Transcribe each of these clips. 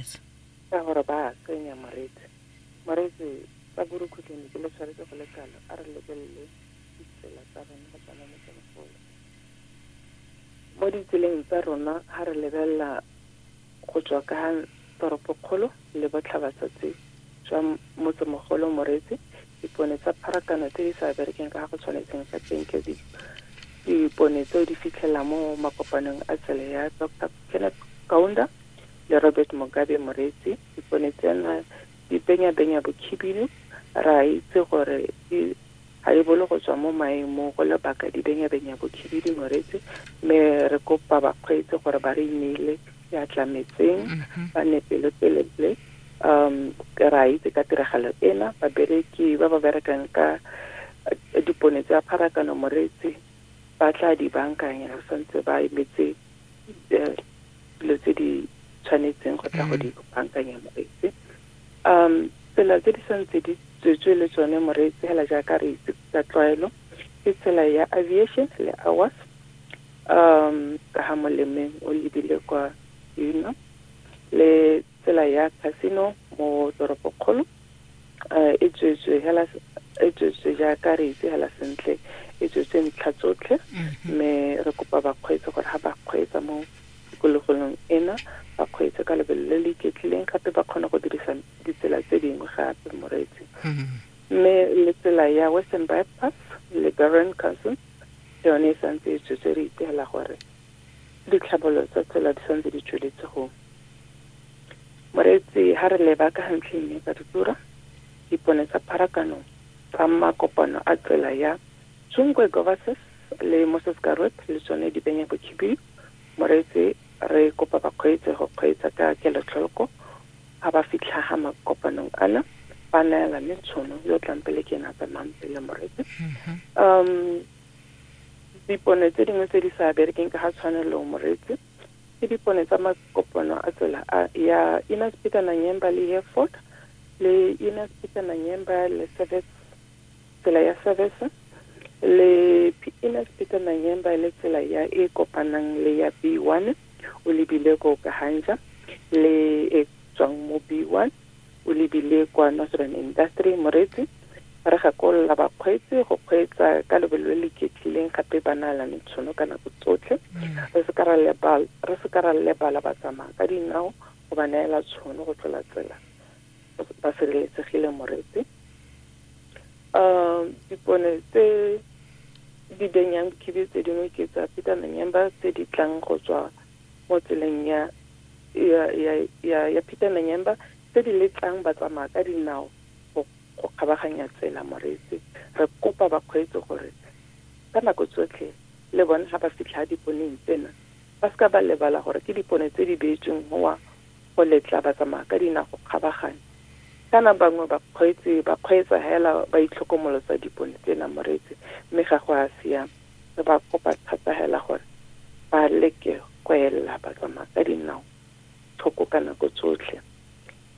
Yes. Ka gore ba tsenya moreetsi. Moreetsi ka borukhutlong leke le tshwanetse go le kalo. A re lebelele ditsela tsa rona go tswa mo motsemogolo. Mo ditseleng tsa rona ha re lebelela go tswa ka toropokgolo le botlhabatsatsi jwa motsemogolo moreetsi Dipone tsa pharakano tse di sa berekeng ka ga go tshwanetseng ka teng ke dipone tseo di fitlhela mo makopanong a tsele ya Doctor Kenneth Kaunda le Robert Mugabe Moretsi. Dipone tsena di benya-benya bokhibidu, re a itse gore di ga di bole go tswa mo maemong go lebaka di benya-benya bokhibidu Moretsi, mme re kopa bakgweetsi gore ba re ineele ya tlametseng ba ne pelotelele um ke ra itse ka tiragalo ena babereki ba ba berekang ka eh, dipone tsa pharakano moreetsi ba tla di bankanya ba santse ba emetse eh, dilo tse di tshwanetseng go tla go di bankanya moreetsi um tsela tse di santse di tswetswe le tsone moreetsi fela jaaka re itse ka tlwaelo ke tsela ya aviation le awas um ka ga molemeng o lebile kwa dino le tsela ya casino mo toropokgolo um e tswetswe hela e tswetswe jaaka re itse hela sentle e tswetswe ntlha tsotlhe mm-hmm. mme re kopa bakgweetsi gore ga ba kgweetsa mo tikologolong ena ba kgweetse ka lebelo le le iketlileng gape ba kgone go dirisa ditsela tse dingwe gape moreetsi mm-hmm. mme le tsela ya western bypass le baron council le yone e santse e tswetse re ipela gore ditlhabololo tsa tsela di santse di tsweletse go moreetsi ha re leba ka gantle mme ka ditura dipone tsa pharakano tsa makopano a tsela ya Tsungwe Govases le Moses Garwet le tsone di benya bokhibidu moreetsi re kopa bakgweetsi go kgweetsa ka kelotlholoko A ba fitlha ha makopanong ana, ba neelane tshono, yo o tlang pele ke ena a tsamayang pele, Moreke. Um, dipone tse dingwe tse di sa berekeng ka ga tshwanelo, Moreetsi, ke dipone tsa makopano a tsela a ya Inner Speaker Nanyemba le Hereford, le Inner Speaker Nanyemba le Service Tsela ya Savesa le Piinas Peter Nanyemba e le tsela ya e kopanang le ya B1 o lebile ko Kahanja le e tswang mo B1 o lebile kwa Northern Industry Moretsi ba re gakolola bakgweetsi go kgweetsa ka lebelo le le iketlileng gape ba naalane tshono ka nako tsotlhe re se ka ra lebala re se ka ra lebala ba tsamaya ka dinao go ba neela tshono go tlola tsela ba sireletsegile moretse um dipone tse di benyang khibi tse dingwe ke tsa peter menyemba tse di tlang go tswa mo tseleng ya ya ya ya, ya peter menyemba tse di letlang ba tsamaya ka dinao go go kgabaganya tsela moretse re kopa bakgweetsi gore ka nako tsotlhe le bone ga ba fitlha diponeng tsena ba seka ba lebala gore ke dipone tse di beetsweng gowa go letla batsamaya ka dinao go kgabaganya. Kana bangwe bakgweetsi ba kgweetsa hela ba itlhokomolosa dipone tse namoreetse mme ga go a siama. Re ba kopa thata hela gore ba leke go ella batsamaya ka dinao thoko ka nako tsotlhe.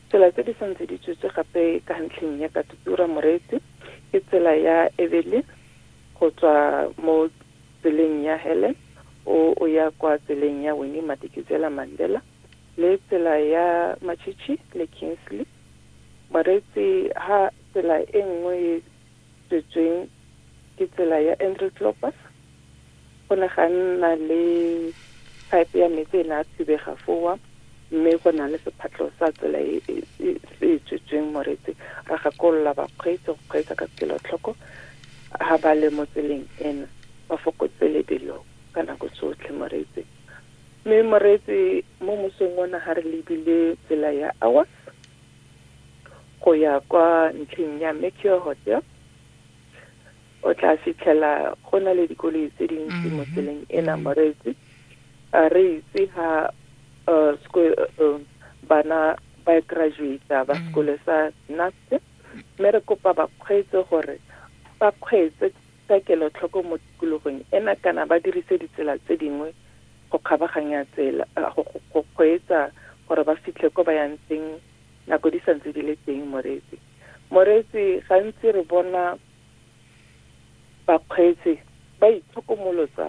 Tsela tse di sa ntse di tswetswe gape ka ntlheng ya Katutura Moreetsi ke tsela ya Evelyn go tswa mo tseleng ya Helen o o ya kwa tseleng ya Winnie Madikizela-Mandela, le tsela ya Machichi le Kingsley. Moreetsi ha tsela e nngwe e tswetsweng ke tsela ya Andrew Klopas. Go ne ga nna le pipe ya metsi e ne a thubega fowa mme go na le sephatlho sa tsela e e e e tswetsweng moreetsi ra gakolola bakgweetsi go kgweetsa ka kelotlhoko ha ba le mo tseleng ena ba fokotse lebelo ka nako tsotlhe moreetsi Mme moreetsi mo mosong ona ga re lebile tsela ya Awas go ya kwa ntlheng ya Mercure Hotel o tla fitlhela go na le dikoloi tse dintsi mo tseleng ena moreetsi a re itse ha uh, sco- uh, bana ba graduata ba sekole sa NAST mme re kopa bakgweetsi gore ba kgweetse Ka kelotlhoko mo tikologong ena kana ba dirise ditsela tse dingwe go kgabaganya tsela go kgweetsa gore ba fitlhe ko ba yang teng nako di santse di le teng. Moreetsi, Moreetsi, Gantsi re bona bakgweetsi ba itlhokomolotsa.